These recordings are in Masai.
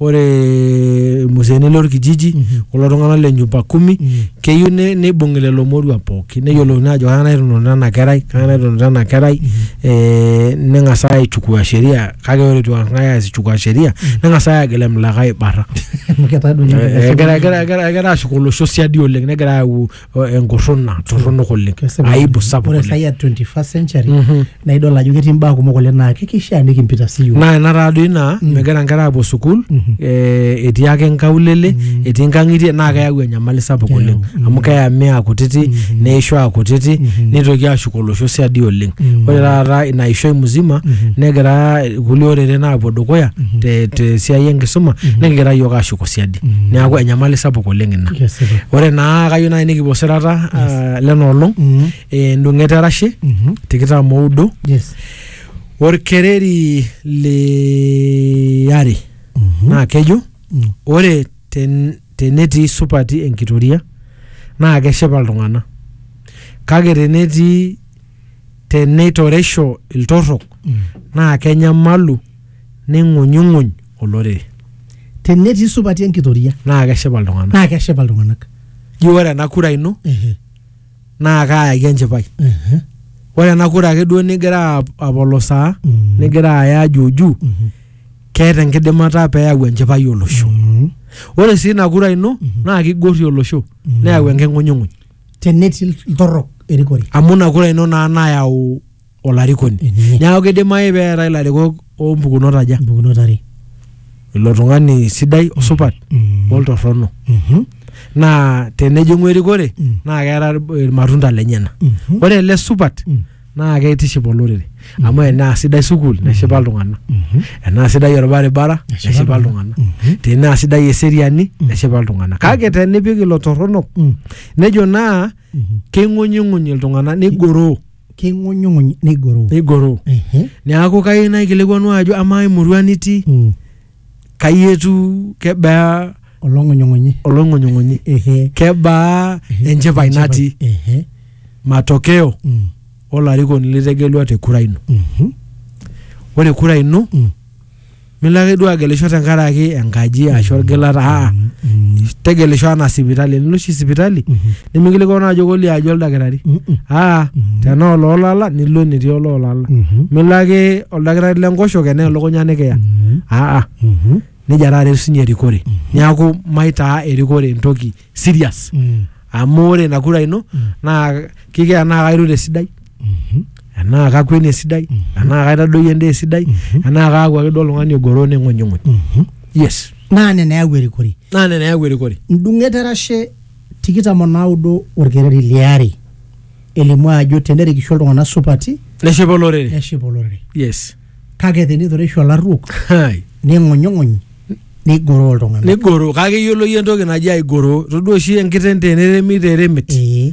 ore irmuseeni lorkijiji kulo tung'anak le nyumba kumi keyieu ne- neibung'i lelo moruak pooki neyiolouni ajo kang'ae nairrinuno ena kerai kang'ae nairrinuno ena kerai eh, neng'as aichukua sheria kake ore itu eng'ae aas ichukua sheria neng'as ae agil emlikae aibarra Amu ketaa duo ninye Eh, egira egira- egira- egira ashuk olosho siadi oleng negira ayau o- enkurruna torronok oleng Kesipa. aibu sapuk ore oleng sai ya 21st century Mhm. naa idol ajo ketii mbaa kumok oleng naa kikishaa nikimpita siyiok naa ina taadoi naa megira nkera aapuo sukuul eh, etii ake nkaulele etii nkang'itie naa keyau enyamali sapuk Keyau, oleng mm. amu keyami aa kutiti neisho aa kutiti neitoki aashuk olosho siadi oleng ore taata ina ishoi musima negira kulie oreren aapuo dukuya te- te siai enkisuma nikigira yiok aashuko siadi Mm. neeku enyamali sapuk oleng ina Kesipa. ore naa kayieu naaji nikipuo sirata ah, lena olong Mm. eh, endung'et erashe Mhm. tikitam oudo Yes. orkereri liare Mhm. naa kejo Mm. ore ten, tenetii supati enkitoria naa keshipa iltung'anak kake tenetii teneitoresho iltorrok naa kenyamalu neing'unyung'uny olorere Tenetii supati enkitoria naa keshipa iltung'anak naa keshipa iltung'anak. ji ore ena kura ino Ehe, naa kaayaki enchipai ehe, ore ena kura ake duo nigira ap- apolosaa Mm. nigira aya juujuu mhm, keeta enkidimata peyau enchipai olosho mhm, ore sii ina kura ino naa kigorrie olosho Mhm. neyau enking'unyung'uny tenetii iltorrok erikore amu ina kura ino naa nayau olarikoni Ehe. neeku kidimayu pee eetae ilarikok oompukunot aja mpukunot are ilo tung'ani sidai osupat Mhm. oltorrono Mhm. naa tenejing'u erikore Mm. naa keeta irmatunda lenyena Mhm. ore ele supat Mm. naa keitiship olorere amu enaa sidai sukuul neshipa iltung'anak enaa sidai orbaribara neshipa iltung'anak tenaa sidai eseriani neshipa iltung'anak kake tenipik ilo torronok nejo naa keing'unying'uny iltung'anak nigoroo king'unyung'uny nigoroo nigoroo Ehe. neaku kayieu naikilikuanu ajo amaa emurua nitii Mm. kai etiu kebaa olong'unyung'unyi olong'unyung'unyi ehe kebaa ehe, enchipai natii ehe matokeo mm, olarikoni litegelua te kura ino mhm, ore kura ino mm, milo ake duo agelisho tenkaraki enkaji ashu orgilata aa mm, mm, tegelisho anaa sipitali enilo oshi sipitali mhm. nimikilikua naa ajo kolio aji oldakitari Mm-mm. aa Mhm. tenaa oloolala nilo enetii oloolala Mhm. milo ake oldakitari lenkoshoke naa elukunya nikiya Mhm. aa Mhm. nejia taata etiu sinye erikore neeku maitaa erikore entoki serious Mm. amu ore ina kura ino Mm. naa kikia enaa kairure esidai Mhm. enaa kakweni esidai Mhm. enaa kaitadoyio endaa esidai Mhm. enaa kaaku ake duo oltung'ani ogoro ning'unying'uny Mhm. yes naa nena eyau erikore naa nena eyau erikore ndung'et erashe tikitam o naudo olkereri li are elimu ajo tenerikisho iltung'anak supati neshipa olorere neshipa olorere yes kake tenitoreisho olarruok Hai. ning'unyung'uny nigoroo iltung'anak nigoro kake iyiolo iyie entoki naji aigoro todua oshi enkiteng teneremi teremit ee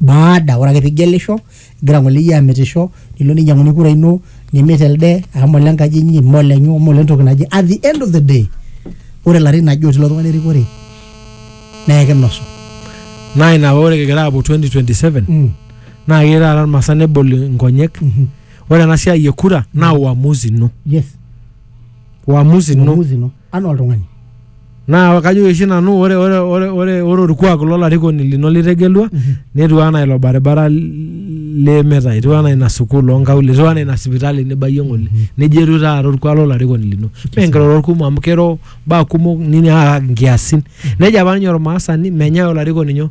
baada ore ake pigelisho igira ng'ole iyie amitisho nilo ninyiang'uni kura ino nimit elde amu ole nkaji inyi mme olenyu mme olentoki naje at the end of the day ore ilarin aje otii ilo tung'ani erikore naa ekinosu naa ina paa ore kigira aapuo 2027 Mm. naa keyieu taata irmaasai nebol inkonyek Mhm. ore ena siai e kura naa uamuzi ino yes uamuzi ino uamuzi ino anaa oltung'ani naa kajo oshi nanu ore ore ore ore ore orkuak lolarikoni lino litegelua netiu anaa ilo baribara limita etiu anaa ina sukuul onkaulele etiu anaa ina sipitali nibayie ng'ole nejia etiu taata orkuak lolarikoni lino mee nkirorot kumok amu kiro mbaa kumok nini aa nkiasin nejia apa ninye ormaasani menyae olarikoni nyoo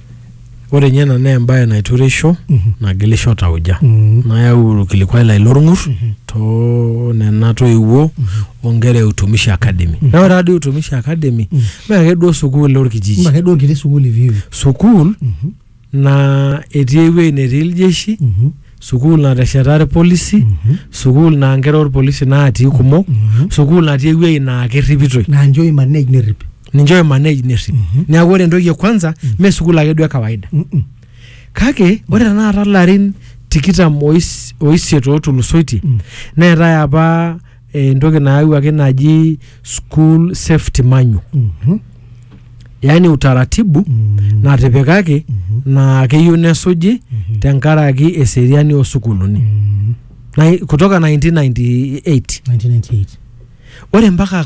Ore ninye ena naa embae naitureisho Mhm. nagilisho tauja Mm. nayau ilkilikuai lai lolng'ur Mhm. too nena toiwuo o nkera e Utumishi Academy. Mhm. Naa ore taadoi Utumishi Academy Mm. mee ake duo sukuul olkijiji. Mme ake duo enkiti sukuul iviu. Sukuul Mhm. naa etii ewueji netii iljeshi, Mhm. sukuul natesheta ilpolisi, Mhm. sukuul naa nkera olpolisi natii kumok, Mhm. sukuul natii ewueji naa kerripitoi. Naa nchoo imanage nerrip. ninche oimanage nerrip neeku ore entoki e kwanza mee sukuul ake duo e kawaida Mm-mm. kake ore tenakata larin tikitam ois- oisiet ootulusoitie Mm. neetae apa eh, entoki nayawuaki naji school safety manual Mhm. yaani utaratibu Mm. natipikaki naa keyieu nesuji Mhm. tenkaraki eseriani oosukuluni Mm. Na- kutoka 1998 1998 ore mpaka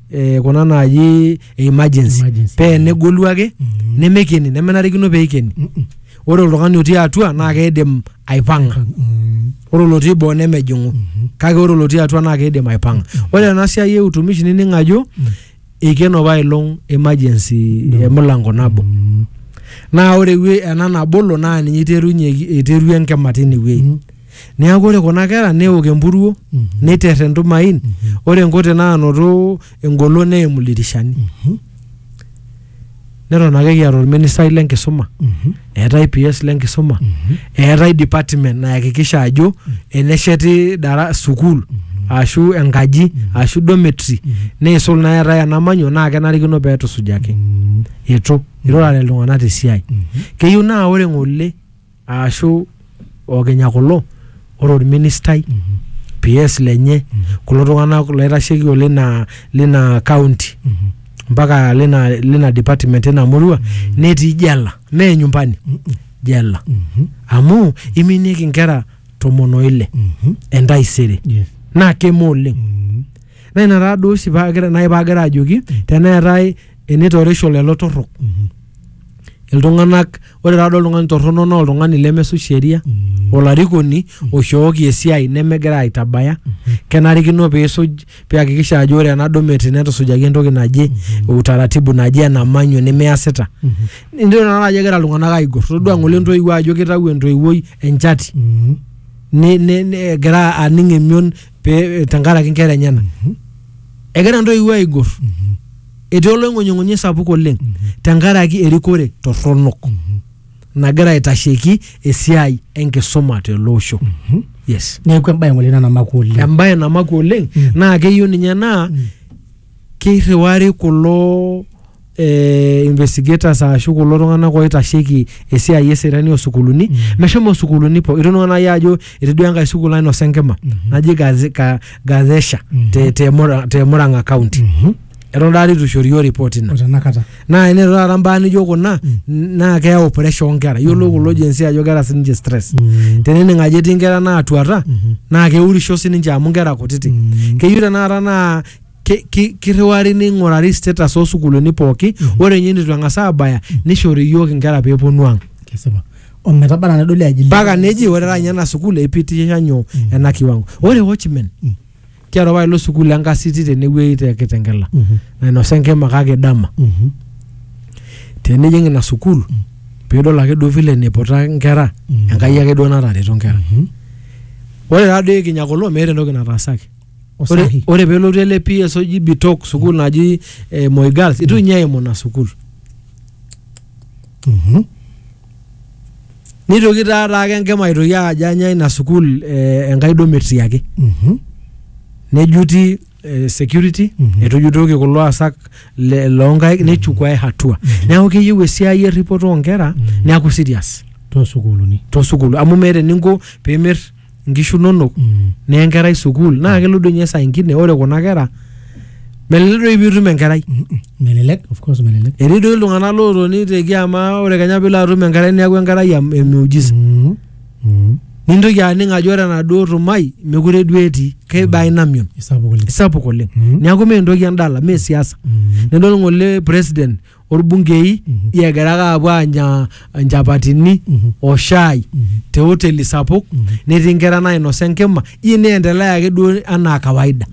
eh, kuna naaji emergency Emergency. pee enegolu ake Mhm. nemekeni nemenarikino pee ikeni Mm, mm, ore oltung'ani otii atua naa keidim aipang'a mm, ore olotii boo nemejing'u mhm. kake ore olotii atua naa keidim aipang'a ore ena siai e utumishi nining ajo Mm. eikeno apa ilong emergency No. emilango nabo Mm, naa ore ewe- ena nabolo naa ninye iterunye iterua enkima tine wueji mm. Neaku ore kuna kera neok empuruo, neiter entumain, ore nkote naanoto engolon neimu ildirishani. Neton ake kiata olministai le nkisuma, eetae PS le nkisuma, eetae department nayakikisha ajo enesheti dara sukuul ashu enkaji ashu dormitory neisul naa eetae enamanyo naa kenarikino peetusujaki. Eitu, eirurare iltung'anak te siai. Keyieu naa ore ng'ole aashu okinya kulo ore orministai PS lenye kulo tung'anak laitasheiki olina lina county mpaka lina lina department ina murua netii jela mee nyumbani jela amu iminieki nkera tomon oile entaisere Yes. naa keme oleng naa ina taa duo oshi paagira nai paagira ajoki teneetae enitorisho lelo torrok iltung'anak ore taadoi oltung'ani torrono naa oltung'ani lemesuj sheria olarikoni oishooki esiai nemegira aitabaya kenarikino piisuj piakikisha ajo ore ena domet netusujaki entoki naje utaratibu naje ena manyo nimiasita nidol tenakata ajo egira iltung'anak aigor todua ng'ole entoiwuo ajo kitau entoiwuoi enchati ni- ni- ni- egira aning emion pe- tenkaraki nkera enyena egira ntoiwuo aigor etii oloing'unying'unyi sapuk oleng tenkaraki erikore torronok nagira aitasheki esiai enkisuma tele osho yes neeku embae ng'ole ina namakwa oleng embaye namakwa oleng Mm. naa keyieu ninye naa keirriwari kulo eh, investigators ashu kulo tung'anak oitasheki esiai eseriani osukuluni mm. meshomo sukuluni po itoning'o nai ajo etii duo enkae sukul nainosa enkima mm -hmm. naji Gaze- Ga- gazesha mm -hmm. te, te, Mura- te murang'a county mm -hmm. eton taata itu ishori yo report ina o tenakata naa ene taata mbaa nijo kuna naa keyau pressure onkera yiolo kulo jensi ajo keeta sininche stress Mm. tenening ajo etii nkera naatuata naa keurisho sininche amu nkera kutiti keyieu tenakata naa ki- ki- kirriwari neing'urari status oosukuuluni pooki ore ninye nitu eng'as aabaya nishori iyiook inkera peeponu ang kesipa ometaba na nedoli aji mpaka neji ore taata ninye ena sukuul eipitisha nyoo ena kiwango ore watchmen tiatua apa ilo sukuul enkasiti tenewueji te kitengela Mhm. nainosa enkima kake dama Mhm. tenijing ina sukuul piidol ake duo vile niputa nkera Mhm. enkai ake duo natareto nkera Mhm. ore taa doi kinya kulo meeta entoki nataasaki ore, osahi ore pelotu ele psg bitok sukuul naji eh, moi girls itu ninye eimu ina sukuul Mhm. nitoki taa taake enkima aitoki ajo anya ina sukuul eh, enkai duo metii ake Mhm. nejuti eh, security Mhm. etujutoki kulo asak le- loonkaik nechukuae hatua neeku keyieu esiai erripoto oonkera neeku serious toosukuuluni toosukuul amu meeta eninko pimir nkishu inonok Mm. niya enkerai sukuul naa kelo doi ninye saa ingine ore kuna kera melelek doi piitum enkerai Mm-mm. melelek of course melelek etii doi iltung'anak lootoni te kiama ore kenya piilo atum enkerai neeku enkerai em- emiujiza Mm. Mm. nintoki aning ajo ore enaduo tumai mekure duo etii keiba ina mion isapuk oleng isapuk oleng Mm. neeku mee entoki endala mee siasa Mm. nidol ng'ole president orbungei Mhm. egira ake aapuo aanya nchapatini Mhm. o shai Mhm. te hoteli sapuk Mhm. netii nkera nainosa enkima iyie neendelea ake duo anaa kawaida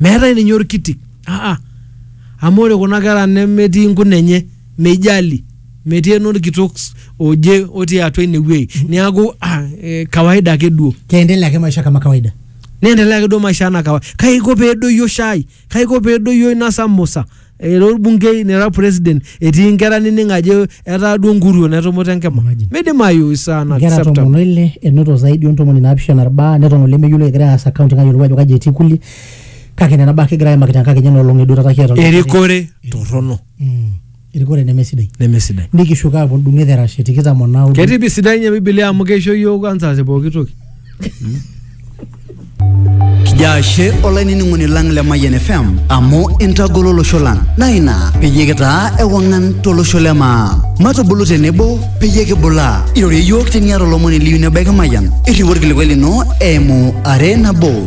meetae ninye orkitik aa amu ore kuna kera nemetii nkuna enye meijali metii enorkitok s- oje otii atua ine wuei niaku ah, eh, kawaida ake duo keendelea ake maisha kama kawaida neendelea ake duo maisha anaa kawaida kaiko peedoyio shai Kaiko pee edoyio ina saa Musa era olbunkei nera president etii nkera nining ajo etaa duo nkuruon etumuta enkima. Imagine. Meidimayu is Nkera unacceptable. tomon oile enoto zaidi o ntomoni naapishana irbaa neton olemeyiolo egira aas accounting ayiolou ajo kaji etii kulie kake nena baa ake egira aimaki tenkakenya ena olong edua taata kiata olmumai. Erikore torrono. Mm. erikore nemesidai nemesidai nikishuko aapuo ndung'et erashe tikitam o naudo ketii pi sidai nye bibilia amu keisho yiok kwanza te pooki toki Kijo ashe olainining'oni lang le Mayian FM amu intagolo olosho lang naa ina peyie kitaa ewang'an tolosho le maa. Matubulu tenebo peyie kibulaa. Irorie iyiook teniata olomoni liyu nebaiki Mayian. Irriu orkilikuai lino eimu are nabo